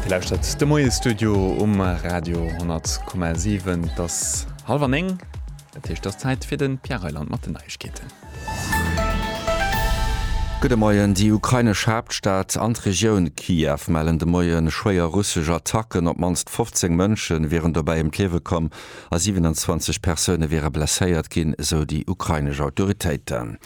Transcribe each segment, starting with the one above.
Dir lauschtert de Moiestudio um Radio 10,7. Et ass hallef an néng. Dat heescht, et ass Zäit fir de Pierre Reyland mat den Neiegkeeten. Gudde Moien, Déi ukrainesch Haaptstad an d'Regioun Kiew mellen de Moie schwéier russesch Attacken. Op d'mannst 15 Mënsche wieren dobäi ëm d'Liewe komm. a 27 Persoune wiere blesséiert ginn, esou déi ukrainesch Autoritéiten.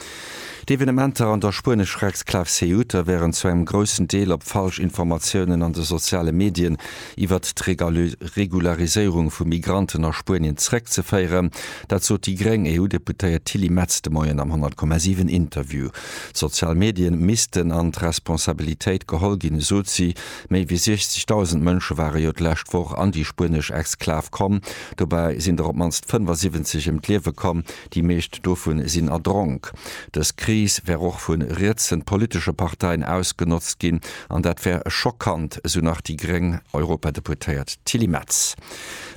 D'Evenementer an der spuenesch Recksklav Ceuta wären zu engem groussen Deel op falsch Informatiounen an de soziale Medien iwwert d'Regulariséierung vu Migranten a Spuenien zeréckzeféieren. Dat sot déi gréng EU-Deputéiert Tilly Metz de Moien am 10,7 Interview. D'sozial Medien missten an d'Responsabilitéit geholl ginn, esot si, Méi wéi 60.000 Mënsche ware jo d'lescht Woch an déi spuenesch Exklav komm. Dobäi sinn der op d'mannst 75 ëm d'Liewe komm, déi meescht dovu sinn erdronk. Dës Kris wär och vu rietsen politesche Parteien ausgenotzt ginn an dat wär schockant, esou nach déi gréng Europadeputéiert Tilly Metz.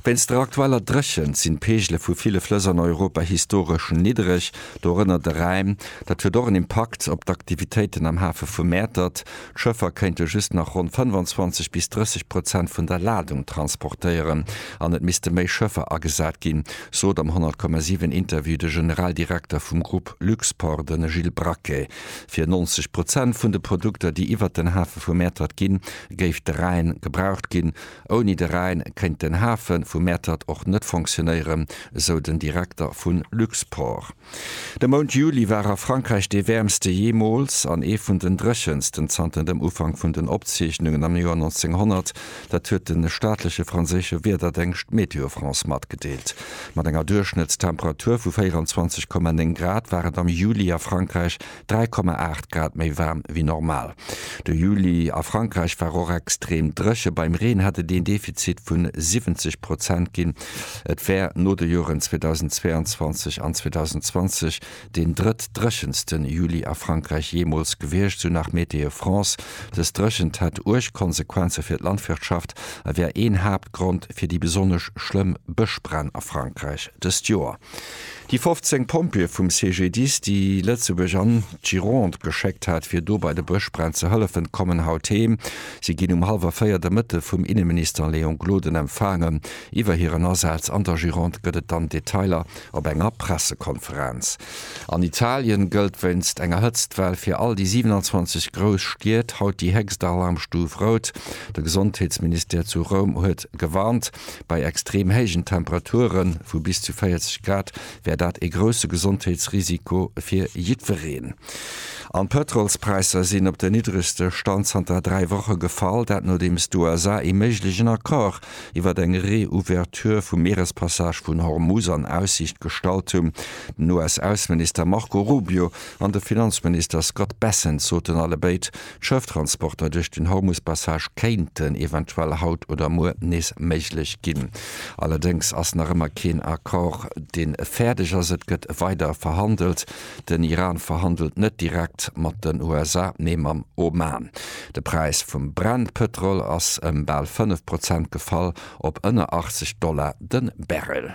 Wéinst der aktueller Dréchent sinn d'Peegele vu ville Flëss an Europa historesch niddereg, dorënner de Rhäin. Dat huet och en Impakt op d'Aktivitéiten am Hafe vu Mäertert. D'Schëffer kéinte just nach ronn 25 bis 30 Prozent vun der Ladung transportéieren an et misste méi Schëffer agesat ginn, sot am 100,7 Interview de Generaldirekter vum Grupp Luxport, de Gilles Braquet. Fir 90 Prozent vun de Produkter, déi iwwert den Hafe vu Mäertert ginn, géif de Rhäin gebraucht ginn. Ouni de Rhäin kéint den Hafe vu Mäertert och net fonctionéieren, sou den Direkter vu Luxport. De Mount Juli war a Frankräich dee wäermste jeemools an ee vun den dréchensten zanter dem Ufank vun den Opzeechnungen am Joer 1900. Dat huet de staatleche franséische Wiederdéngscht Météo France matgedeelt. Mat enger Duerchschnëttstemperatur vu 24,9 Grad war et am Juli a Frankräich 3,8 Grad méi waarm wéi normal. De Juli a Frankräich war och extrem dréche, beim Reen hätt et een Defizit vu 70 Prozent ginn. Et wär no de Joren 2022 an 2020 deen drëtt-dréchenste Juli a Frankräich jeemools gewiescht, sou nach Météo France. Dës Dréchent hätt uerg Konsequenze fir d'Landwirtschaft a wär een Haaptgrond fir déi besonnesch schlëmm Bëschbränn a Frankräich dëst Joer. Déi 15 Pompjeeë vum CGDIS, déi Lëtzebuerg an d'Gironde geschéckt hat, fir do bei de Bëschbränn ze hëllefen, kommen haut heem. Si ginn um hallwer véier de Mëtte vum Inneminister Léon Gloden empfaangen. Iwwer hiren Asaz an der Gironde gëtt et dann Detailer op enger Pressekonferenz. An Italien gëllt wéinst enger Hëtztwell fir all déi 27 grouss Stied haut déi héchst Alarmstuf Rout. De Gesondheetsministère zu Roum huet gewarnt. Bei extrem héijen Temperature vu bis zu 40 Grad wär dat ee grousse Gesondheetsrisiko fir jiddwereen. An d'Pëtrolspräisser sinn op den niddregste Stand zanter dräi Woche gefall, dat nodeems d'USA ee méiglegen Accord iwwer eng Reouverture vum Mierespassage vun Hormuz an Aussiicht gestallt hunn. Den US-Ausseminister Marco Rubio an de Finanzminister Scott Bessent soten allebéid, D'Schëfftransporter duerch den Hormuspassage kéinten eventuell haut oder muer nees méiglech ginn. Allerdéngs ass nach ëmmer keen Accord, deen fäerdeg ass. Et gëtt weider verhandelt. Den Iran verhandelt net direkt mat den USA, mee mam Oman. De Präis vum Brent-Pëtrol ass ëm bal 5 Prozent gefall op ënner 80 Dollar de Barrel.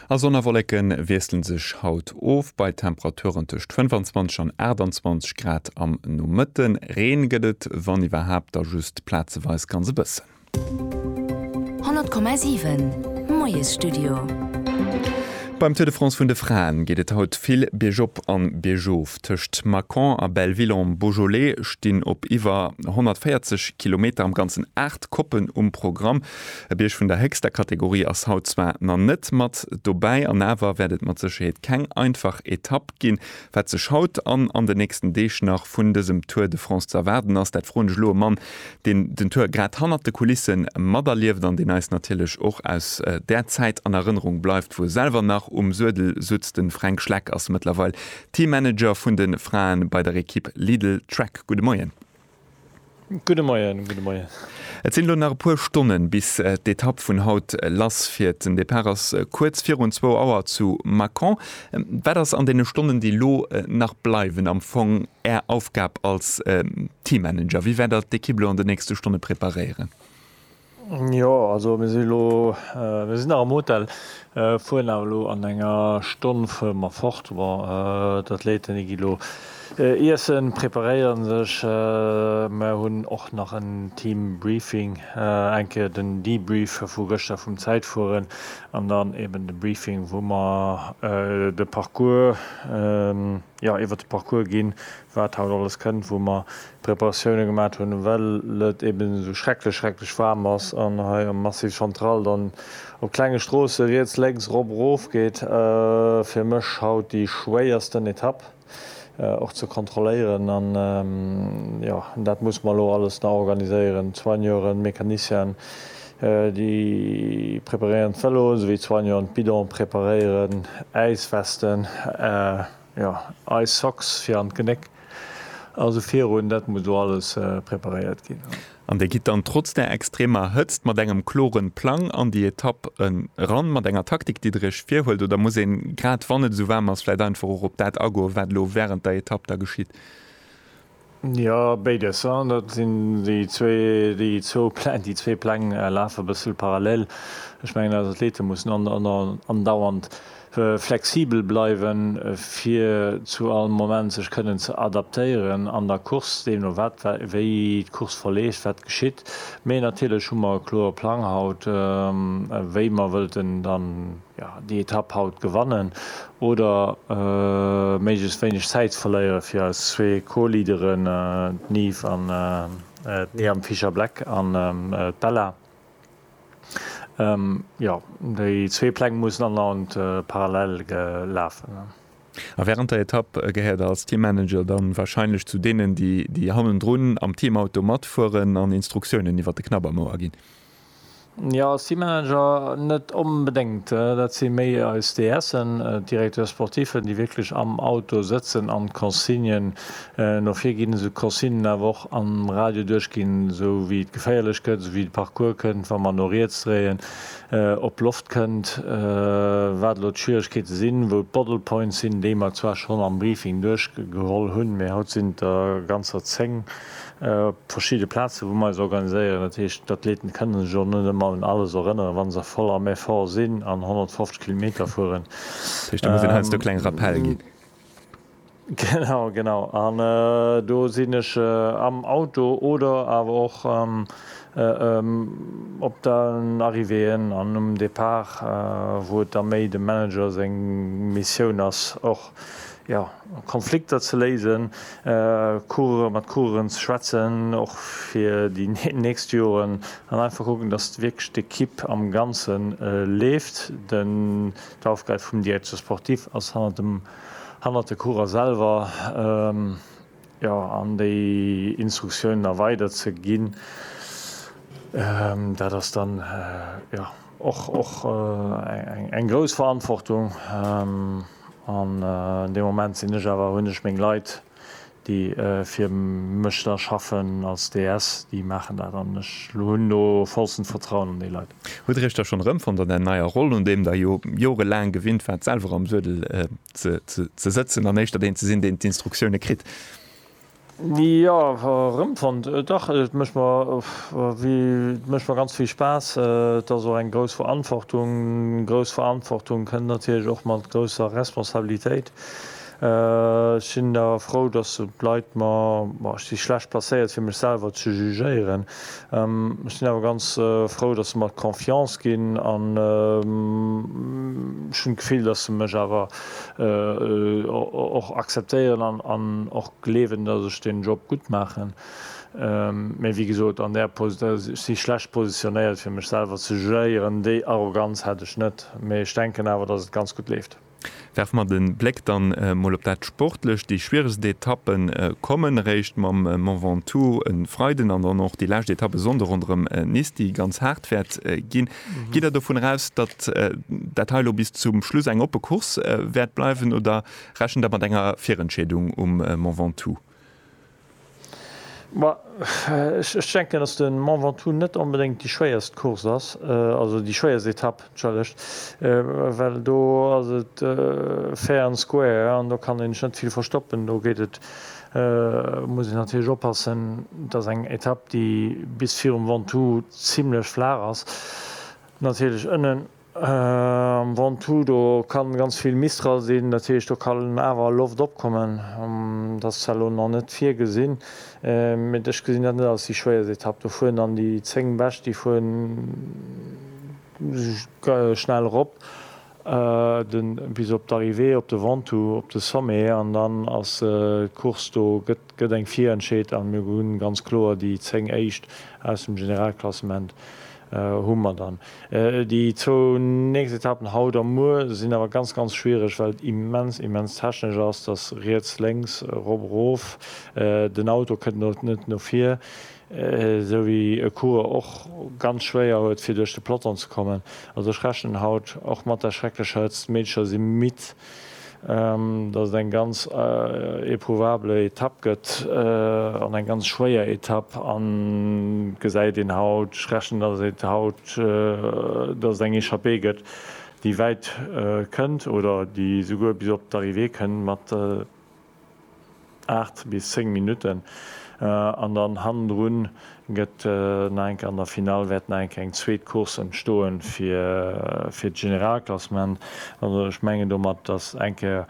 A Sonn a Wolleke wiessle sech haut of, bei Temperaturen tëscht 25 an 28 Grad am Nomëtte. Reen gëtt et, wann iwwerhaapt, da just plazeweis ganz e bëssen. 100,7 Moiesstudio. Beim Tour de France vun de Fraen geet et haut vill biergop an biergof. Tëscht Mâcon a Belleville-en-Beaujolais stinn op iwwer 140 Kilometer am ganzen 8 Koppen um Programm. E Bierg vun der héchster Kategorie ass haut zwar na net mat dobäi an awer wäert et mat Sécherheet keng einfach Etapp ginn. Wat sech haut an an den nächsten Deeg nach vun dësem Tour de France ze erwaarden ass, dat froen ech elo e Mann, deen den Tour grad hannert de Kulisse materlieft an deen eis natierlech och aus där Zäit an Erënnerung bleift, wou e selwer nach um Suedel sutz. De Fränk Schleck ass mëttlerweil Teammanager vun de Frae bei der Ekipp Lidl Trek. Gudde Moien. Gudde Moien, gudde Moien. Et sinn elo nach e puer Stonnen bis d'Etapp vun haut lass fiert. Den Depart ass kuerz virun zwou Auer zu Mâcon. Wat ass an deene Stonnen déi elo nach bleiwen am Fong Är Aufgab als Teammanager? Wéi wäert Der d'Ekipp elo an de nächste Stonne preparéieren? Jo, also mir sinn elo, mir sinn nach am Hotel, fueren awer elo an enger Stonn fuere mer fort. Bon, d'Athléiten, déi gi elo iessen, preparéieren sech. Mer hunn och nach en Team Briefing, eng Kéier den Debrief vu gëschter vum Zäitfueren an dann eben de Briefing, wou mer de Parcours, jo, iwwert de Parcours ginn, wat haut alles kënnt, wou mer Preparatioune gemat hunn, well et eben esou schrecklech, schrecklech waarm ass an hei am Massif Central dann op klenge Stroosse riets, lénks, erop, erof geet. Fir mech haut déi schwéiersten Etapp och ze kontrolléieren an, jo, dat muss mer elo alles nach organiséieren, Soigneuren, Mecanicienen, déi preparéieren d'Vélo, esou wéi d'Soigneuren d'Bidone preparéieren, Äiswesten. Jo, Ice Socks fir an d'Genéck. Also virun, dat muss do alles preparéiert ginn. An Dir gitt dann trotz der extremer Hëtzt mat engem kloren Plang an déi Etapp eran, mat enger Taktik, déi Der Iech virhuelt? Oder muss een, grad wann et esou waarm ass, vläit einfach och op dat agoen, wat elo wärend der Etapp da geschitt? Jo, béides. Dat sinn déi zwee, déi zwou Pläng, déi zwee Pläng lafe bëssel parallel. Ech mengen, eis Athlete mussen andauernd flexibel bleiwen, fir zu all Moment sech kënnen ze adaptéieren an der Course, deemno wat wéi d'Course verleeft, wat geschitt. Mee natierlech hu mer e klore Plang haut, wéi mer wëllten dann jo, déi Etapp haut gewannen oder méiglechst wéineg Zäit verléieren, fir eis zwee Co-Leaderen, d'Nive an d'Niamh Fischer-Black an d'Bella, jo, déi zwee Pläng mussen anenant parallel lafen. A wärend der Etapp gehéiert der als Teammanager dann warscheinlech zu deenen, déi hannendrun am Teamauto matfueren an Instruktiounen iwwert de Knabbermouer ginn? Jo, si Manager net onbedéngt. Dat si méi eis DSen, Directeurs sportifs, déi wierklech am Auto sëtzen an d'Consignen no vir ginn, esou d'Consignen awer och am Radio duerchginn, esou wéi et geféierlech gëtt, esou wéi de Parcours kënnt, wa mer no riets dréien, ob Loft kënnt, wat elo d'Schwieregkeete sinn, wou d'Bottle Points sinn, déi mer zwar schonn am Briefing duerchgeholl hunn, mee haut sinn der ganzer 10. Op verschidde Plazen, wou mer eis organiséieren, dat heescht, d'Athleten kënnen sech och net ëmmer un alles erënneren, wa se voll am Effort sinn an 150 Kilometer fueren. Dat heescht, do muss een heiansdo kleng Rappelle ginn. Genau, genau. An do sinn ech am Auto oder awer och op den Arrivéeën an um Depart, wou et da méi dem Manager seng Missioun ass, och, jo, Konflikter ze léisen, Coureuren, mat Coureuren ze schwätzen, och fir déi nächst Joren, an einfach kucken, dass wierklech d'Ekipp am Ganze leeft. D'Aufgäb vum Directeur sportif ass hannert de Coureurer selwer. Jo, an déi Instruktiounen erweidert ze ginn, dat ass dann jo och och eng grouss Verantwortung. An dee Moment sinn ech awer, hunn ech meng Leit, déi fir mech da schaffen als DS, déi maachen dat an ech hunn do vollstent Vertrauen an déi Leit. Hutt Dir Iech da schonn erëmfonnt an där neier Roll, un deem Der jo jorelaang gewinnt waart, selwer am Suedel Ze sëtzen an éischter deen ze sinn, deen d'Instruktioune kritt. Jo, erëmfonnt, dach, et mécht mer, et mécht mer ganz vill Spaass. Et ass och eng grouss Verantwortung. Grouss Verantwortung kënnt natierlech och mat grousser Responsabilitéit. Ech sinn da frou, datt d'Leit mer, ech si schlecht placéiert fir mech selwer ze jugéieren, Ech sinn awer ganz frou, dass se mer d'Confiance ginn an ech hunn d'Gefill, dass se mech awer och akzeptéieren an och gleewen, dass ech den Job gutt maachen. Mee wéi gesot, an där Position, ech si schlecht positionéiert, fir mech selwer ze jugéieren. Déi Arroganz hätt ech net, mee ech denken awer, dass et ganz gutt leeft. Werfe mer den Bléck dann mol op dat Sportlecht. Déi schwieregst Etappen kommen eréischt mam Mont Ventoux en Freiden an dann och déi lescht Etapp e Sonnden ronderëm Nice, déi ganz haart wäert ginn. Gitt der dovun eraus, datt dat hei elo bis zum Schluss eng oppe Course wäert bleiwen oder rechent der mat enger Virentscheedung um Mont Ventoux? Ma ech denken, dass de Mont Ventoux net onbedéngt déi schwéierst Course ass, also déi schwéierst Etapp, entschëllegt, well do ass et fair and square an do kann een sech net vill verstoppen. Do geet et, muss een natierlech oppassen, et ass eng Etapp, déi bis virum Ventoux zimlech flaach ass, natierlech ënnen Am Ventoux do ka ganz vill Mistral sinn, dat heescht do kann awer Loft opkommen. Dat ass zwar elo nach net virgesinn, mee ech gesinn dat net als déi schwéierst Etapp. Do fueren dann déi 10 Bescht, déi fueren schnell erop bis op d'Arrivée op de Ventoux, op de Sommet an dann ass d'Course do, gëtt eng virentscheet a mir hunn ganz kloer déi 10 Éischt aus dem Generalklassement Hu mer dann. Déi zwou nächst Etappen haut a muer sinn awer ganz, ganz schwiereg, well et immens, immens technesch ass. Dass riets, lénks, erop, erof, den Auto kënnt no, net no vir, esou wéi e Coureur och ganz schwéier huet, fir duerch de Peloton ze kommen. Also ech rechnen haut och mat der schrecklech Hëtzt. D'Meedercher si midd. datt et eng ganz éprouvable Etapp gëtt an eng ganz schwéier Etapp an gesäit een haut, ech rechnen datt et haut, datt et eng Echappée gëtt déi wäit kënnt oder déi souguer bis op d'Arrivée kënnt mat. 8 bis 10 Minutten an dann hannendrun gëtt nach eng Kéier an der Finall wäert nach eng Kéier eng zweet Course entstoen fir fir d'Generalklassement. Also ech mengen domat, dass eng Kéier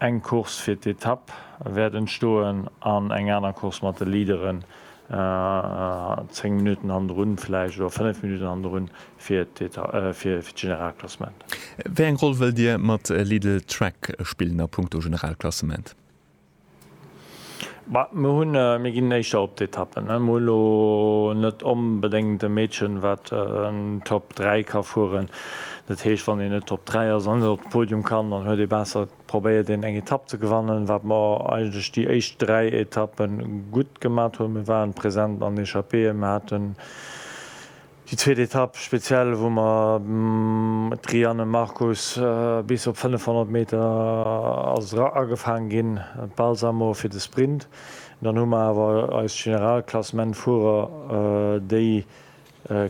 eng Course fir d'Etapp wäert entstoen an eng aner Course mat de Leaderen 10 Minutten hannendrun vläicht oder 5 Minutten hannendrun fir d'Generalklassement. Wéi eng Roll wëllt Dir mat Lidl Track spillen a punkto Generalklassement? Mir ginn éischter op d'Etappen. Mir hunn elo net onbedéngt e Meedchen, wat Top 3 ka fueren. Dat heescht, wann een net Top 3 ass an net op de Podium kann, dann huet ee besser, probéiert een eng Etapp ze gewannen. Wat mer eigentlech déi éischt dräi Etappe gutt gemat hunn, mir waren present an Echappéeën, mir haten Déi zweet Etapp speziell, wou mer d'Rianne Marcus bis op 500 Meter ass agefaang ginn, d'Balsamo fir de Sprint. Dann hu mer awer eis Generalklassementfuerer, déi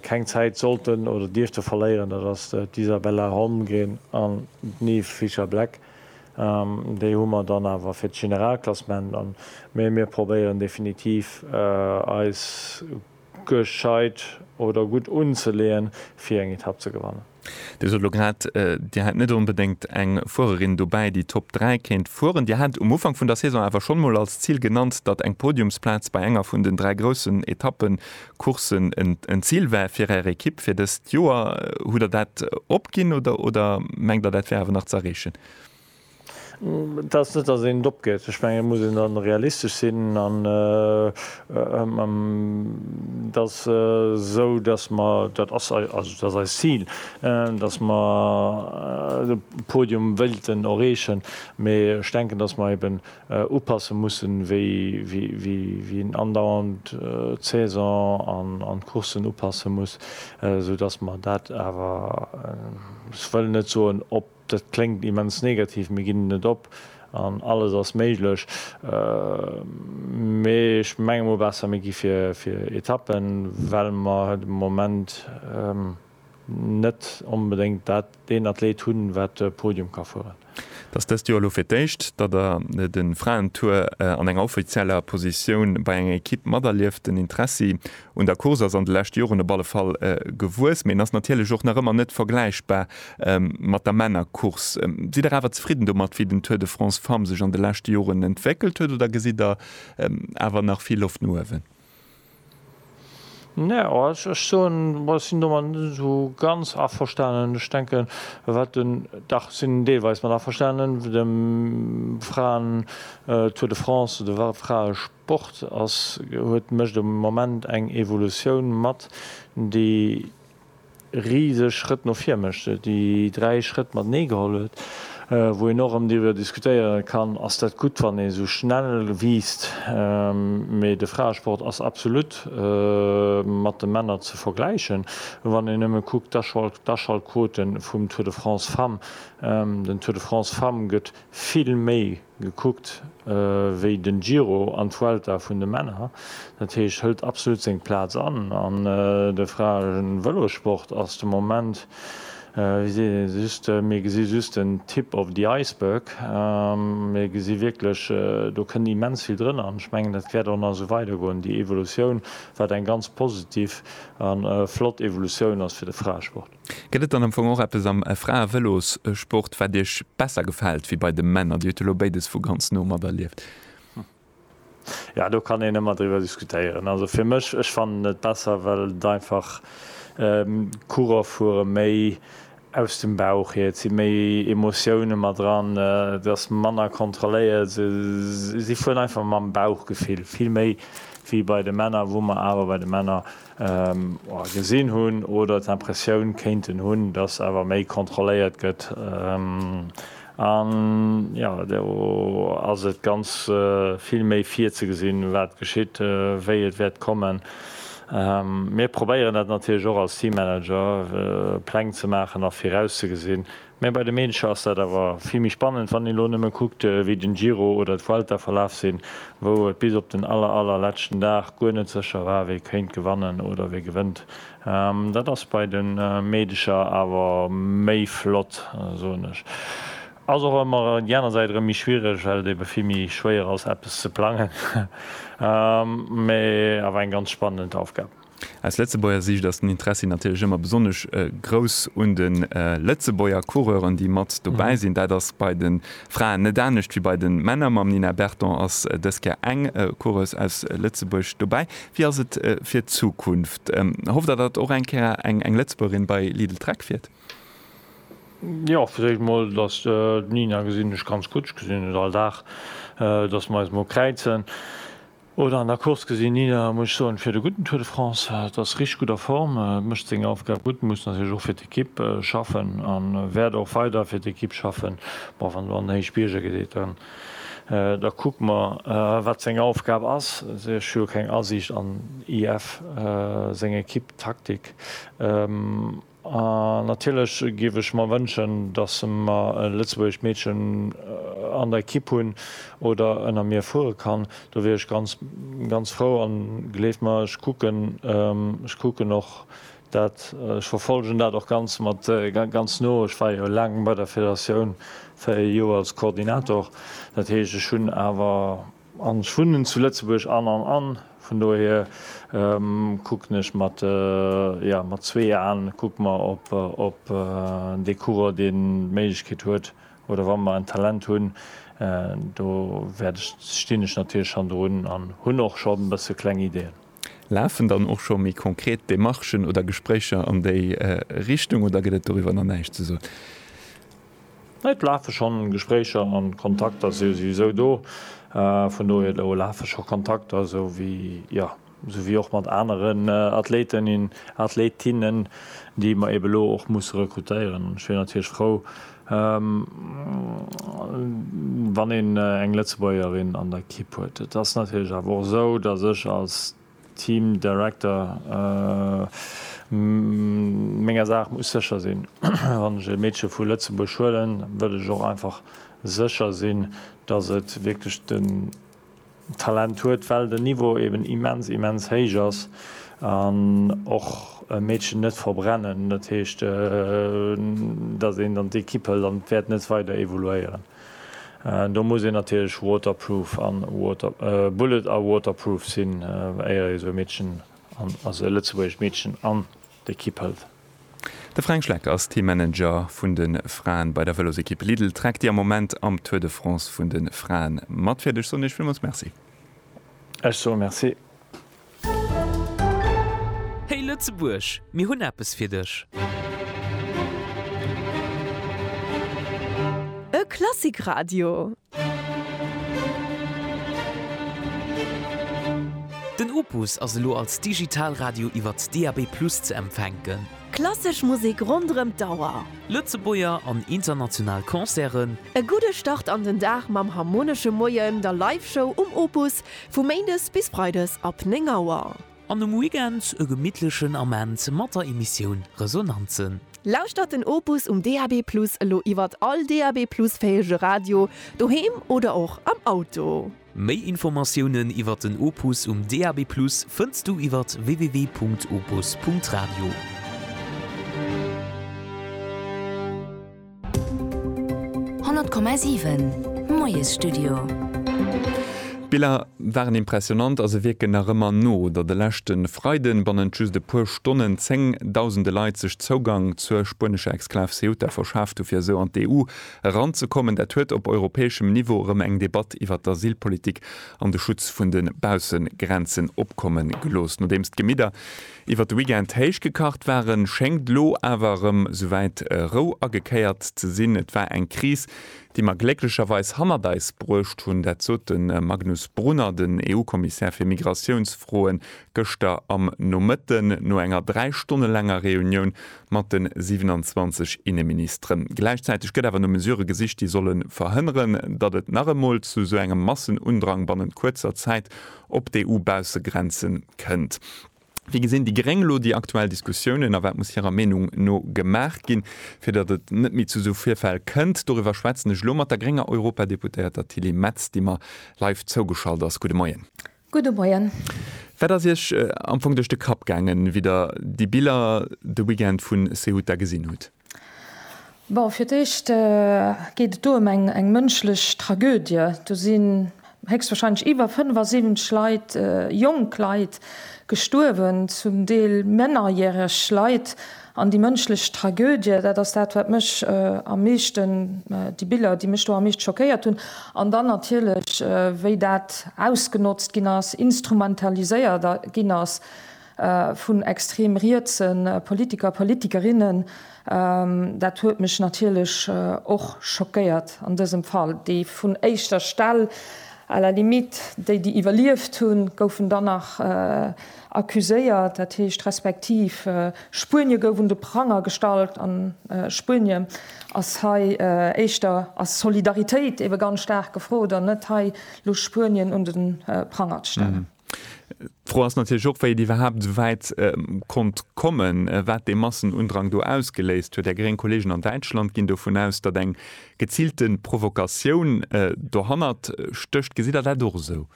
keng Zäit sollten oder dierfte verléieren, dat ass d'Isabella Holmgren an d'Nive Fischer-Black. Déi hu mer dann awer fir d'Generalklassement, mee mir probéieren definitiv eis gescheit oder gutt unzeleeën, fir eng Etapp ze gewannen. Dir sot elo grad, Dir hätt net onbedéngt eng Fuererin dobäi, déi Top 3 kéint fueren. Dir hat um Ufank vun der Saison awer schonn mol als Zil genannt, datt eng Podiumsplaz bei enger vun den dräi groussen Etappecourssen en Zil war fir Är Ekipp fir dëst Joer. Hutt Der dat opginn oder mengt Der, dat wär awer nach ze erreechen? Et ass net, datt een et opgëtt. Ech mengen, et muss een da realistesch sinn. An et ass esou, datt mer, dat ass eist Zil, datt mer de Podium wéilten erreechen. Mee ech denken, datt mer eben upasse mussen, wéi een andauernd d'Saison an d'Courssen upasse muss, esoudatt mer dat awer, ech wëll net soen op Dat kléngt immens negativ, mir ginn net op an alles ass méiglech. Mee ech menge mol besser mir gi fir Etappen, well mer de Moment net onbedéngt dat, deen Athleet hunn, wat e Podium ka fueren. Et ass dëst Joer elo fir d'éischt, datt Der de Fraentour an enger offizieller Positioun bei enger Ekipp materlieft. Den Interessi Un der Course ass an de leschte Joren op alle Fall gewuess, mee en ass natierlech och nach ëmmer net vergläichbar mat der Männercourse. Sidd Der awer zefridden domat, wéi den Tour de France Femmes sech an de leschte Joren entwéckelt huet oder gesitt Der awer nach vill Loft no uewen? Nä, also ech soen, ech sinn domat net esou ganz averstanen. Ech denken, wat den, dach, ech sinn deelweis mat averstanen, de Fraen-Tour de France, de Frae-. D'Board ass huet mécht um Moment eng Evolutioun mat, déi riseg Schrëtt no vir mécht, déi dräi Schrëtt matenee geholl huet, wou een och erëm driwwer diskutéiere kann, ass dat gutt wann ee sou schnell wiisst, mee de Fraesport ass absolut mat de Männer ze vergläichen, wann een nëmme kuckt d'Aschaltquote vum Tour de France Femmes, den Tour de France Femmes gëtt vill méi Gekuckt wéi den Giro an d'Vuelta vun de Männer, dat heescht hëlt absolut seng Plaz an. An de Fraen Vëlosport ass de Moment, wéi seet een just, mir gesi just den Tip of the iceberg. Mir gesi wierklech, do kënnt immens vill drënner an ech mengen dat wäert och nach esou weider goen, déi Evolutioun, wat eng ganz positiv a flott Evolutioun ass fir de Fraesport. Gëtt et dann am Fong och eppes am Frae-Vëlossport, wat Iech besser gefält wéi bei de Männer? Dir hutt elo béides vu ganz no materlieft. Jo, do kann een ëmmer driwwer diskutéieren. Also fir mech, ech fannen et besser, well et einfach, d'Coureur fuere méi aus dem Bauch hier, et si méi Emotioune mat dran, et ass manner kontrolléiert, se si fueren einfach mam Bauchgefill, vill méi wéi bei de Männer, wou mer awer bei de Männer Gesinn hunn oder d'Impressioun kéinten hunn, datt awer méi kontrolléiert gëtt. An jo, do ass et ganz vill méi virzegesinn, wat geschitt, wéi et wäert kommen. Mir probéieren dat natierlech och als Teammanager, Pläng ze maachen a virauszegesinn, Mä bei de Mädche ass dat awer vill méi spannend, wann een elo nëmme kuckt, wéi den Giro oder d'Vuelta verlaf sinn, wou et bis op den aller, allerletschten Dag guer net sécher war, wie kéint gewannen oder wie gewënnt. Dat ass bei de Meedecher awer méi flott, soen ech. Ass och ëmmer déi aner Säit erëm méi schwiereg, well et ebe vill méi schwéier ass, eppes ze plangen. Mä awer eng ganz spannend Aufgab. Aus Lëtzebuerger Siicht ass den Interessi natierlech ëmmer besonnesch grouss un de Lëtzebuerger Coureuren, déi mat dobäi sinn. Dat ass bei de Fraen net anescht wéi bei de Männer. Mam Nina Berton ass dës Kéier eng Coureuse aus Lëtzebuerg dobäi. Wéi ass et fir d'Zukunft? Hofft Der, datt och eng Kéier eng Lëtzebuergerin bei Lidl-Trek fiert? Jo, fir d'éischt emol, datt d'Nina gesinn ech ganz gutt. Ech gesinn et all Dag, datt mer eis emol kräizen. Oder an der Course gesinn Nina, muss ech soen, fiert e gudden Tour de France, hat, ass richteg gutt a Form, mécht seng Aufgab gutt, muss natierlech och fir d'Ekipp schaffen a wäert och weider fir d'Ekipp schaffen. Bon, wann do an den Héichbierger geet, dann da kucke mer, wat seng Aufgab ass. Ech hu jo keng Asiicht an IF seng Ekipptaktik. A natierlech géif ech mer wënschen, datt mer e lëtzebuergescht Meedchen an der Ekipp hunn oder ënner mir fuere kann. Do wier ech ganz, ganz frou. An gleeft mer, ech kucken, ech kucken och dat, ech verfollegen dat och ganz mat, ganz no. Ech war jo laang bei der Federatioun, véier Joer als Koordinator. Dat heescht, ech hunn awer. An ech wunnen zu Lëtzebuerg an an an vun dohier kucken ech mat, jo, mat zwee Aen kucke mer op dee Coureur, dee d'Méiglechkeet huet oder wa mer en Talent hunn, do wäert ech, stinn ech natierlech schonn drun an hunn och scho e bësse kleng Ideeën. Lafen dann och scho méi konkret Demarchen oder Gespréicher an déi Richtung oder gëtt et doriwwer nach näischt ze soen? Et lafe schonn Gespréicher an Kontakter si souwisou do. Vun dohier do lafe scho Kontakter, sou wéi, jo, sou wéi och mat aneren Athleten, Athletinnen, déi mer eebe lo och musse rekrutéieren. An ech wier natierlech frou, wann een eng Lëtzebuergerin an der Kipp huet. Et ass natierlech awer och esou, dass ech als Team Director, Menger Saach muss sécher sinn. Wann ech e Meedche vu Lëtzebuerg huelen, wëll ech och einfach sécher sinn, datt et wierklech den Talent huet, well den Niveau eben immens, immens héich ass. An och e Meedchen net verbrennen, dat heescht, datt een dann d'Ekipp hëlt an et wäert net weider evoluéieren. Do muss een natierlech waterproof a bullet a waterproof sinn, éier ee sou e Meedchen, also e lëtzebuergescht Meedchen, an d'Ekipp hëlt. De Fränk Schleck ass Teammanager vun de Fraen bei der Vëlosekipp Lidl Trek, déi am Moment am Tour de France vun de Fraen matfiert. Ech soen Iech villmools Merci. Ech soe Merci. Hey Lëtzebuerg, mir hunn eppes fir dech! E Klassikradio! Den Opus ass elo als Digitalradio iwwert DAB+ ze empfänken. Klassesch Musek ronderëm d'Auer. Lëtzebuerger an international Concerten. E gudde Start an den Dag mam Harmonesche Moien, der Live-Show um Opus, Vu Méindes bis Freides ab 9 Auer. An um Weekend e gemittlechen Ament mat der Emissioun Resonanzen. Lauschtert den Opus um DAB+ elo iwwert all DAB+ fähege Radio, doheem oder och am Auto. Méi Informatiounen iwwert den Opus um DAB+ fënns du iwwert www.opus.radio. 100,7 Moiesstudio. D'Biller waren impressionant a se wierken nach ëmmer no, datt e leschte Freiden bannent just e puer Stonnen zéng Dausende Leit sech Zougang zur spuenescher Exklav Ceuta verschaaft hu fir esou an d'EU eranzekommen. Dat huet op europäeschem Niveau erëm eng Debatt iwwert d'Asylpolitik an de Schutz vun de Baussegrenzen opkomme gelooss, nodeems d'Gemidder Iwwert de Weekend héich gekacht waren, schéngt elo awer erëm souwäit Rou agekéiert ze sinn. Et war eng Kris, déi mer glécklecherweis hannert eis bruecht hunn. Dat sot de Magnus Brunner, den EU-Kommissär fir Migratiounsfroen, gëschter am Nomëtten no enger dräi Stonne laanger Reunioun mat de 27 Inneministeren. Gläichzäiteg gëtt awer no Mesurë gesicht, déi solle verhënneren, datt et nach emol zu esou engem Massenundrang bannent kuerzer Zäit op d'EU-Baussegrenze kënnt. Wéi gesinn déi Gréng elo déi aktuell Diskussiounen a wat muss hirer Meenung no gemaach ginn, fir datt et net méi zu esou Virfäll kënnt? Doriwwer schwätzen ech elo mat der grénger Europadeputéierter Tilly Metz, déi mer live zougeschalt ass. Gudde Moien. Gudde Moien. Wat ass Iech am Fong duerch de Kapp gaangen, wéi Der déi Biller de Weekend vu Ceuta gesinn hutt? Bon, fir d'éischt geet et do ëm eng mënschlech Tragödie. Do sinn héchstwahrscheinlech iwwer 75 Leit, jonk Leit, gestuerwen, zum Deel mennerjäreg Leit. An déi mënschlech Tragödie, dat ass dat, wat mech am meeschten, déi Biller, déi mech do am meescht schockéiert hunn. An dann natierlech, wéi dat ausgenotzt ginn ass, instrumentaliséiert ginn ass, vun extrem rietse Politiker, Politikerinnen, dat huet mech natierlech och schockéiert an dësem Fall, déi vun éischter Stell, à la limite déi, déi iwwerlieft hunn, goufen dann nach accuséiert, dat heescht respektiv Spuenie gouf un de Pranger gestallt an Spuenie ass hei éischter, ass Solidaritéit ebe ganz staark gefrot an net hei elo Spuenien un de Pranger ze stellen. D'Fro ass natierlech och, wéi et iwwerhaapt esou wäit konnt kommen, wat dee Massenundrang do ausgeléist huet. Är gréng Kolleegen an Däitschland ginn dovun aus, datt eng geziilte Provokatioun dohannert stécht. Gesitt Der dat och esou?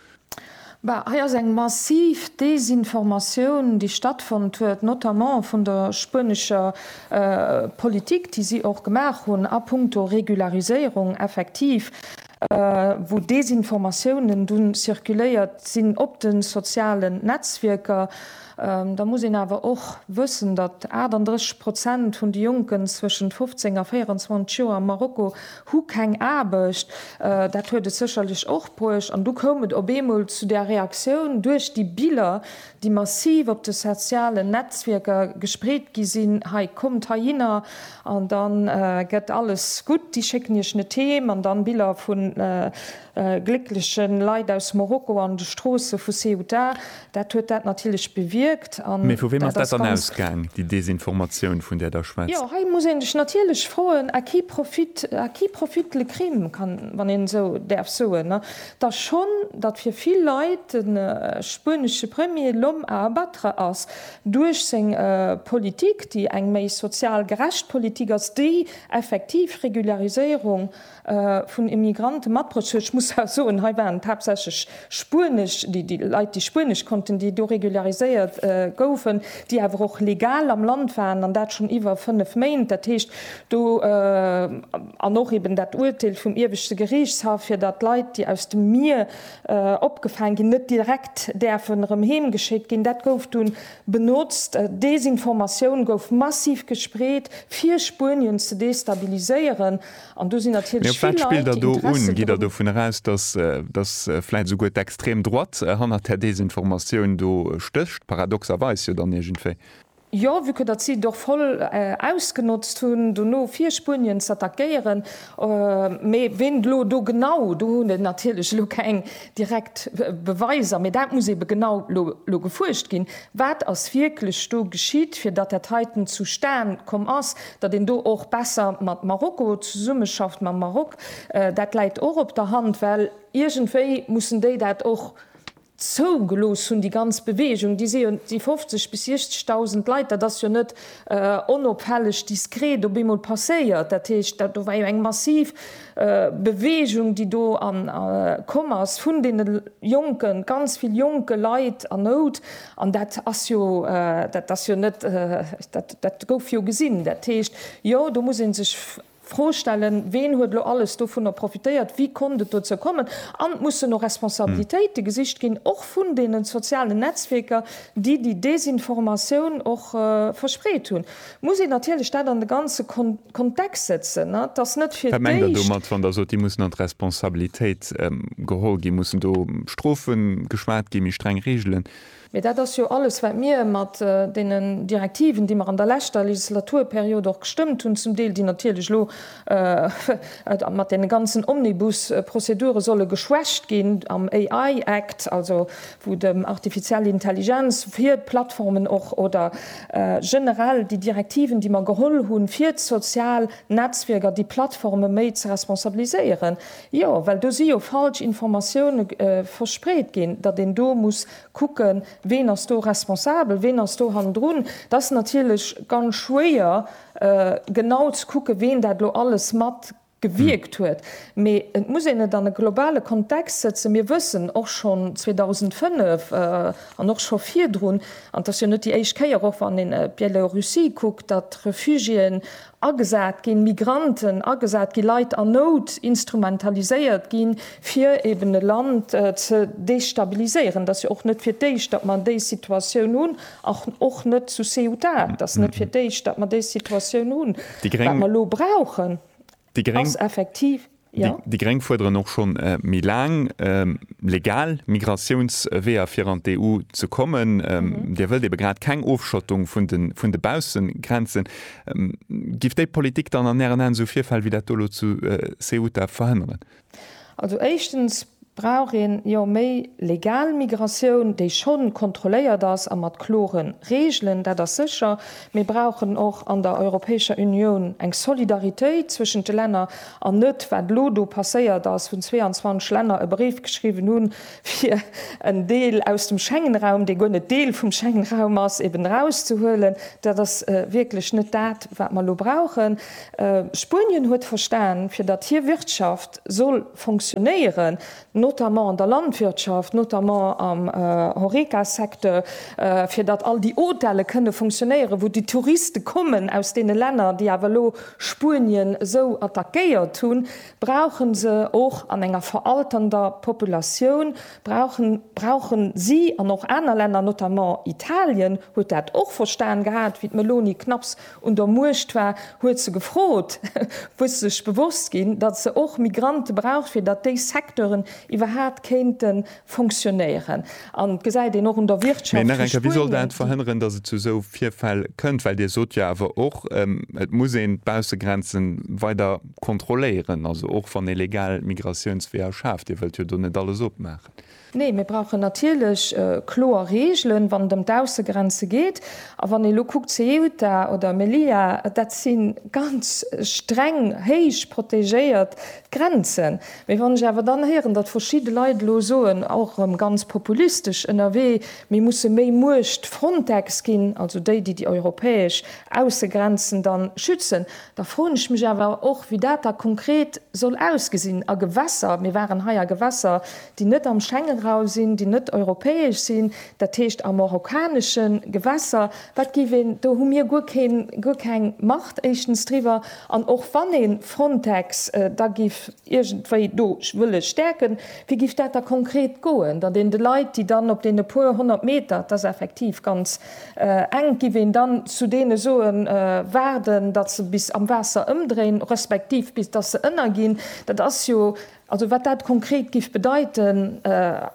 Bah, hei ass eng massiv Desinformatioun, déi stattfonnt huet, notamment vun der spuenescher Politik, déi si och gemaach hunn a puncto Regulariséierung. Effektiv, wou Desinformatiounen dunn zirkuléiert sinn op de sozialen Netzwierker. Da muss een awer och wëssen, datt 38 Prozent vun de Jonken zwëschent 15 a 24 Joer am Marokko hu keng Aarbecht. Dat huet et sécherlech och bruecht. An du koum et op eemol zu där Reaktioun duerch déi Biller, déi massiv op de sozialen Netzwierker gespreet gi sinn, hei kommt heihinner an da gëtt alles gutt, déi schécken Iech net heem, an dann Biller vu gléckleche Leit aus Morokko an de Stroosse vu Ceuta, dat huet dat natierlech bewierkt. Mee vu weem ass dat dann ausgaang, déi Desinformatioun, vun där Der schwätzt? Jo, hei muss ee sech natierlech froen, à qui profite le crime, wann een esou däerf soen. Datt schonn datt fir vill Leit de spuenesche Premier l'homme à abattre ass duerch seng Politik, déi eng méi sozial gerecht Politik ass, déi effektiv Regulariséierung vun Immigranten mat bruecht huet, ech muss awer soen, hei waren et haaptsächlech spuenesch, déi Leit déi spuenesch konnten, déi do regulariséiert goufen, déi awer och legal am Land waren, an dat schonn iwwer fënnef Méint, dat heescht do. An och eben dat Uerteel vum Ieweschte Geriichtshaff, fir datt Leit, déi aus dem Mier opgefaang ginn, net direkt däerfen erëm heem geschéckt ginn, dat gouf dunn benotzt. Desinformatioun gouf massiv gespreet, fir Spuenien ze destabiliséieren. An do sinn natierlech vill Leit, déi Interesse dru. Mee op wat spillt Der do un? Geet Der dovun eraus, datt, datt vläicht esouguer d'Extrem Droite hannert där Desinformatioun do stécht? Paradoxerweis jo dann iergendwéi. Jo, vu que datt si et och voll ausgenotzt hunn, dono fir Spuenien z'attackéieren. Mee ween elo do genau, do hunn ech natierlech elo keng direkt Beweiser, mee dat muss eebe genau elo gefuerscht ginn, wat ass wierklech do geschitt, fir datt dat heiten zustan komm ass, datt een do och besser mat Marokko zesummeschafft, mam Maroc. Dat läit och op der Hand, well iergendwéi mussen déi dat och zougelooss hunn, déi ganz Beweegung, déi si jo, déi 50 bis 60.000 Leit, dat ass jo net onopfälleg, diskret op eemol passéiert. Dat heescht, dat do war jo eng massiv Beweegung, déi do komm ass vun deene Jonken, ganz vill jonke Leit an Nout. An dat ass jo, dat ass jo net, dat gouf jo gesinn. Dat heescht, jo, do muss ee sech. Fro stellen, ween huet elo alles dovunner profitéiert, wéi konnt et dozou kommen? An et mussen och Responsabilitéite gesicht ginn, och vun deene sozialen Netzwierker, déi déi Desinformatioun och verspreet hunn. Et muss een natierlech dat an de ganze Kontext setzen. Et ass net fir d'éischt. Wat mengt Der domat, wann Der sot, déi mussen an d'Responsabilitéit geholl ginn? Mussen do Strofe geschwat ginn, méi streng Reegelen? Mee dat ass jo alles, wat mir mat deenen Direktiven, déi mer an der leschter Legislaturperiod och gestëmmt hunn, zum Deel, déi natierlech elo mat deene ganzen Omnibus-Prozedure solle geschwächt ginn, am AI Act, also wou et ëm artifiziell Intelligenz fir d'Plattformen och oder generell déi Direktiven, déi mer geholl hunn, fir d'sozial Netzwierker, déi Plattforme méi ze responsabiliséieren. Jo, well do si jo falsch Informatioune verspreet ginn, datt een do muss kucken, ween ass do responsabel, ween ass do hannendrun. Et ass natierlech ganz schwéier, genau ze kucken, ween dat elo alles mat gewierkt huet. Mee et muss een et an e globale Kontext sëtzen. Mir wëssen och schonn 2005 an och scho virdrun, an et ass jo net déi éischt Kéier, och wann een Bielorussie kuckt, datt Refugiéen agesat ginn, Migranten agesat ginn, Leit an Nout instrumentaliséiert ginn, fir eben e Land ze destabiliséieren. Et ass jo och net fir d'éischt, datt mer déi Situatioun hunn, och net zu Ceuta. Et ass net fir d'éischt, datt mer déi Situatioun hunn. Wat mer elo brauchen, ass effektiv. Déi Gréng fuerderen och schonn méi laang legal Migratiounsweeër fir an d'EU ze kommen. Dir wëllt ebe grad keng Ofschottung vun de Baussegrenzen. Giff déi Politik dann an Ären Aen esou Virfäll wéi dat do elo zu Ceuta verhënneren? Also éischtens Brauch een jo méi legal Migratioun, déi schonn kontrolléiert ass a mat kloren Regelen, dat ass sécher. Mir brauchen och an der Europäescher Unioun eng Solidaritéit zwëschent de Länner an net, wat elo do passéiert ass, wou 22 Länner e Bréif geschriwwen hunn, fir en Deel aus dem Schengenraum, dee guer net Deel vum Schengenraum ass, eben erauszehuelen. Dat ass wierklech net dat, wat mer elo brauchen. Spuenien huet verstan, fir datt hir Wirtschaft soll fonctionnéieren, notamment an der Landwirtschaft, notamment am Horeca-Secteur, fir datt all déi Hôtele kënne fonctionnéieren, wou déi Touriste kommen aus deene Länner, déi awer elo Spuenien esou attackéiert hunn, brauche se och an enger veralternder Populatioun, brauche brauche si an och aner Länner, notamment Italien huet dat och verstan gehat, wéi d'Meloni knapps un der Muecht war, huet se gefrot, wou se sech bewosst ginn, datt se och Migrante braucht, fir datt déi Secteuren iwwerhaapt kéinte fonctionnéieren. An et gesäit een och un der Wirtschaft vu Spuenien, déi. Mee nach eng Kéier, Wéi soll dat verhënneren, datt et zu esou Virfäll kënnt? Well Dir sot jo awer och, et muss een d'Baussegrenze weider kontrolléieren, also och wann ee legal Migratiounsweeër schaaft. Dir wëllt jo do net alles opmaachen. Nee, mir brauchen natierlech kloer Reegelen, wann et ëm d'Aussegrenze geet. A wann ee elo kuckt, Ceuta oder Melilla, dat si ganz streng, héich protegéiert Grenzen. Mee wann ech awer dann héieren, datt verschidde Leit elo soen, och erëm ganz populistesch ënnerwee, mir musse méi Muecht Frontex ginn, also déi, déi déi europäesch Aussegrenzen dann schützen, da froen ech mech awer och, wéi dat da konkret soll ausgesinn a Gewässer. Mir waren hei a Gewässer déi net am Schengenraum sinn, déi net europäesch sinn, dat heescht a marokkanesche Gewässer, wat géif een, do hu mir guer keen, guer keng Macht éischtens driwwer. An och wann ee Frontex da géif iergendwéi do wëlle stäerken, wéi géif dat da konkret goen, datt een de Leit, déi dann op deene puer honnert Meter, et ass effektiv ganz enk, géif een dann zu deene soen, waarden, datt se bis am Waasser ëmdréin, respektiv bis datt se ënnerginn? Dat ass jo Also wat dat konkret giff bedeiten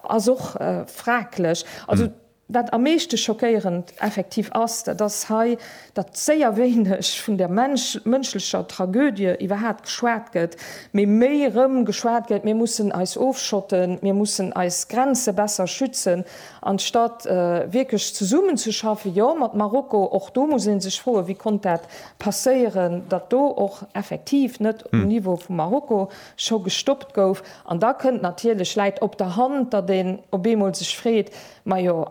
ass och fraglech. Also wat am meeschte schockéierend effektiv ass, dat ass hei, datt séier wéineg vun der mënschlecher Tragödie iwwerhat geschwat gëtt, mee méi erëm geschwat gëtt, mir mussen eis ofschotten, mir mussen eis Grenze besser schützen, anstatt wierklech zesummenzeschaffen, jo mat Marokko. Och do muss ee sech froen, wéi konnt dat passéieren, datt do och effektiv net um Niveau vu Marokko scho gestoppt gouf an da kënnt natierlech, läit op der Hand, datt een op eemol sech freet, majo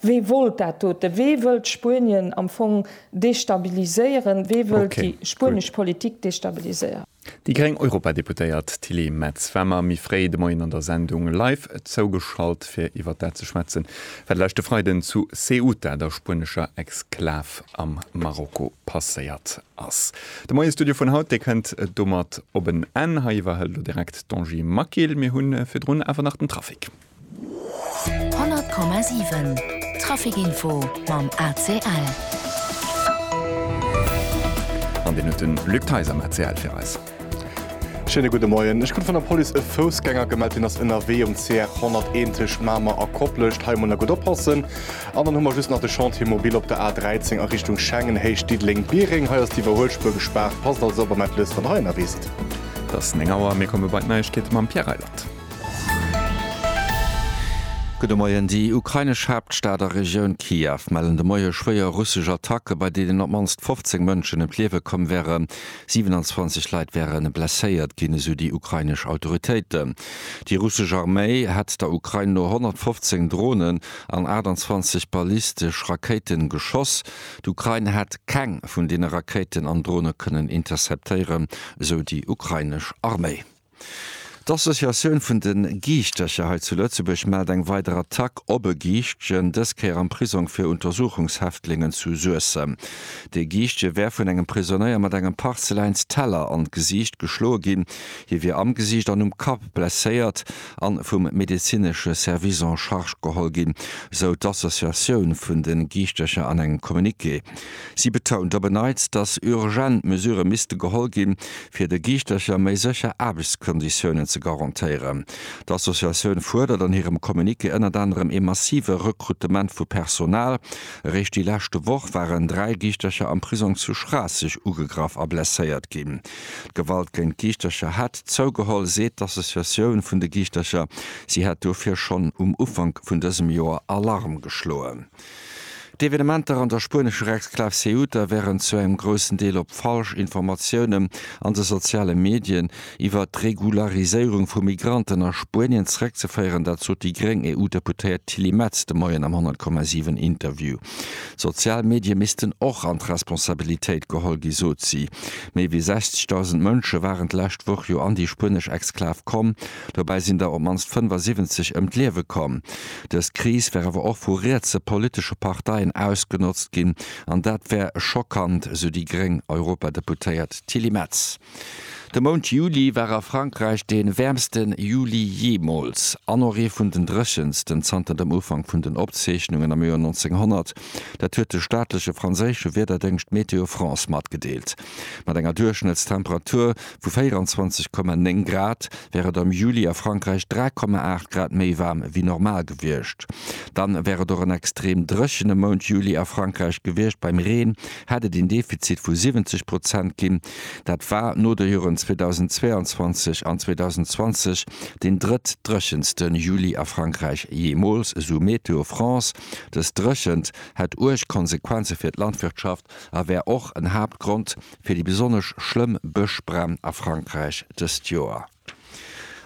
wee wollt dat dote, wee wëllt Spuenien am Fong destabiliséieren, wee wëllt déi spuenesch Politik destabiliséieren? Déi gréng Europadeputéiert Tilly Metz war mer méi fréi de Moien an der Sendung live zougeschalt fir iwwer dat ze schwätzen, wat leschte Freiden zu Ceuta, der spuenescher Exklav am Marokko, passéiert ass. De Moiestudio vun haut, dee kënnt domat op en Enn. Hei iwwerhëlt elo direkt d'Angie Maquil. Mir hunn virdrun awer nach den Trafic. 100,7 Trafic Info mam ACL. An deen huet de Luc Theis am ACL fir eis. Schéine gudde Moien. Ech krut vun der Police e Foussgänger gemellt, deen ass ënnerwee um CR 100 Éntech Mamer a Koplescht. Hei emol nach gutt oppassen. An dann hu mer just nach de Chantier mobile op der A 13 a Richtung Schengen, héicht Diddeleng, Biereng. Hei ass d'Iwwerhuelspuer gespaart. Passt also op a mellt lous, wann der hei ënnerwee sidd. Et ass 9 Auer, mir komme bei d'Neiegkeete mam Pierre Reyland. Gudde Moien. Déi ukrainesch Haaptstad a Regioun Kiew mellen de Moie schwéier russesch Attacke, bei deenen op d'mannst 15 Mënschen ëm d'Liewe komm wären. 27 Leit wäre blesséiert ginn, esou déi ukrainesch Autoritéiten. Déi russesch Arméi hätt der Ukrain no 115 Dronen, an 28 ballistesch Rakéite geschoss. D'Ukrain hätt keng vun deene Rakéiten an Drone kënnen interceptéieren, esou déi ukrainesch Arméi. D'Associatioun vun de Giichtercher hei zu Lëtzebuerg mellt eng weider Attack op e Giichtchen, dës Kéier am Prisong fir Untersuchungshäftlingen zu Suessem. Dee Giichtje wär vun engem Prisonéier mat engem Parzeläinsteller an d'Gesiicht geschloe ginn. Hie wier am Gesiicht an um Kapp blesséiert. a vum medezinesche Service en charge geholl ginn, sou d'Associatioun vun de Giischtercher an engem Communiqué. Si betount op en Neits, datt urgent Mesurë misste geholl ginn, fir de Giischtercher méi sécher Aarbechtskonditiounen ze garantéieren. D'Associatioun fuerdert an hirem Communiqué ënnert anerem ee massive Rekrutement vu Personal. Eréischt déi leschte Woch waren dräi Giischtercher am Prisong zu Schraasseg ugegraff a blesséiert ginn. D'Gewalt géint d'Giichtercher hätt zougeholl, seet d'Associatioun vun de Giichtercher. Si hätt dofir schonn um Ufank vun dësem Joer Alarm geschloen. D'Evenementer an der spuenescher Exklav Ceuta wären zu engem groussen Deel op falsch Informatiounen an de soziale Medien iwwer d'Regulariséierung vu Migranten a Spuenien zeréckzeféieren. Dat sot déi gréng EU-Deputéiert Tilly Metz de Moien am 100,7 Interview. D'sozial Medie missten och an d'Responsabilitéit geholl gi, sot si. Méi wéi 60.000 Mënsche waren d'lescht Woch jo an déi spuenesch Exklav komm. Dobäi sinn der op d'mannst 75 ëm d'Liewe komm. Dës Kris wär awer och vu rietse politesche Parteien ausgenotzt ginn an dat wär schockant, sou déi gréng Europadeputéiert Tilly Metz. De Mount Juli war a Frankräich dee wäermste Juli jeemools an och ee vun den dréchensten zanter dem Ufank vun den Opzeechnungen am Joer 1900. Dat huet de staatleche franséische Wiederdéngscht Météo France matgedeelt. Mat enger Duerchschnëttstemperatur vu 24,9 Grad wär et am Juli a Frankräich 3,8 Grad méi waarm wéi normal gewiescht. Dann wär et och en extrem dréchene Mount Juli a Frankräich gewiescht. Beim Reen hätt et een Defizit vu 70 Prozent ginn. Dat war no de Hiren 2022 an 2020 deen drëttdréchenste Juli a Frankräich jeemools, esou Météo France. Dës Dréchent hätt uerg Konsequenze fir d'Landwirtschaft a wär och en Haaptgrond fir déi besonnesch schlëmm Bëschbränn a Frankräich dëst Joer.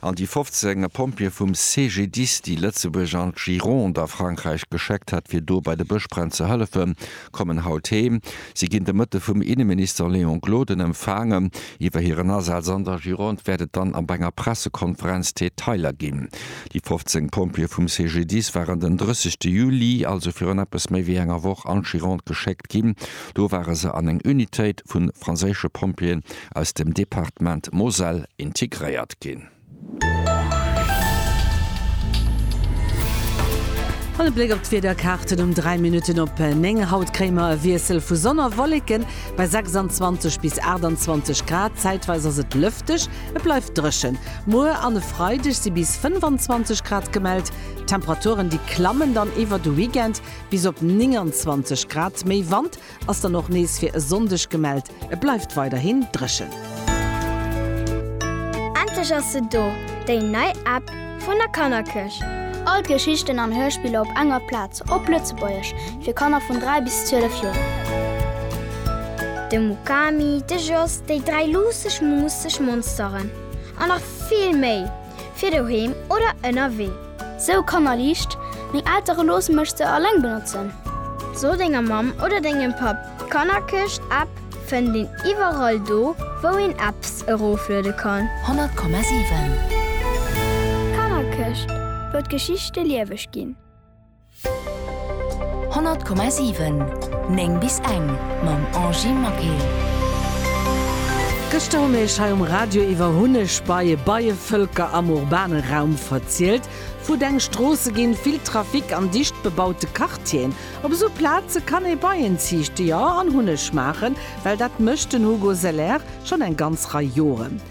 an déi 15 Pompjeeë vum CGDIS, déi Lëtzebuerg an d'Gironde a Frankräich gescheckt hat, fir do bei de Bëschbränn ze hëllefen, kommen haut heem. Si ginn de Mëtte vum Inneminister Léon Gloden empfaangen. Iwwer hiren Asaz an der Gironde wäert et dann ab enger Pressekonferenz Detailer ginn. Déi 15 Pompjeeë vum CGDIS waren den 30 Juli, also virun eppes méi wéi enger Woch, an d'Gironde geschéckt. geschéckt ginn. Do ware se an eng Unitéit vu franséische Pompjeeën aus dem Departement Moselle integréiert ginn. An e Bléck op d'Wiederkaarten um 3 Minutten op 9. Haut kréie mer e Wiessel vu Sonn a Wolleken bei 26 bis 28 Grad. Zäitweis ass et lëfteg, et bleift dréchen. Muer an e Freideg si bis 25 Grad gemellt. D'Temperaturen, déi klammen dann iwwer de Weekend. Bis op 29 Grad méi Wand ass dann och nees fir e Sonndeg gemellt, et bleift weiderhin dréchen. Endlech ass se do, déi nei App vun der Kannerkierch! All d'Geschichten an Hörspiller op enger Plaz, op Lëtzebuergesch, fir Kanner vun 3 bis 12 Joer. De Mukami, de Jos, déi dräi luusseg, muusseg Monsteren an nach vill méi! fir doheem oder ënnerwee. Sou Kanner liicht, meng Eltere loosse mech se alleng benotzen. So denger Mamm oder dengem Papp, d'Kannerkëscht App fënnt een iwwerall do wou een Apps erofluede kann. 100,7. D'Kannerkëscht, wou d'Geschichte lieweg ginn. 100,7 9 bis eng mam Angy Maquet. Gëschter hu mir iech hei um Radio iwwer Hunnegbeie, Beievëlker am urbane Raum verzielt. Futteng Stroosse ginn, vill Trafic an dicht bebaute Quartieren. Op esou Plaze kann ee Beien ziichte, jo, an Hunneg maachen, well dat mécht den Hugo Seler schonn eng ganz Rei Joren.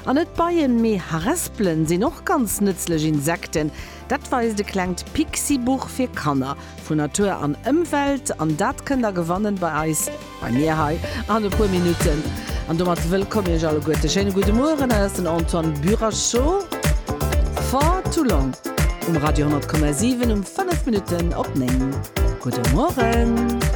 An net Beien, mee Harespelen sinn och ganz nëtzlech Insekten. Dat weist e klengt Pixi-Buch fir Kanner vun Natur an Ëmwelt an dat kënnt der gewannen bei eis, bei mir hei an e puer Minutten. An domat wëllkomm Iech alleguerten, e schéine gudde Mueren. Dat ass den Antoine Burachot, Far Too Long um Radio 100,7 um 5 Minutten op 9. Gudde Mueren.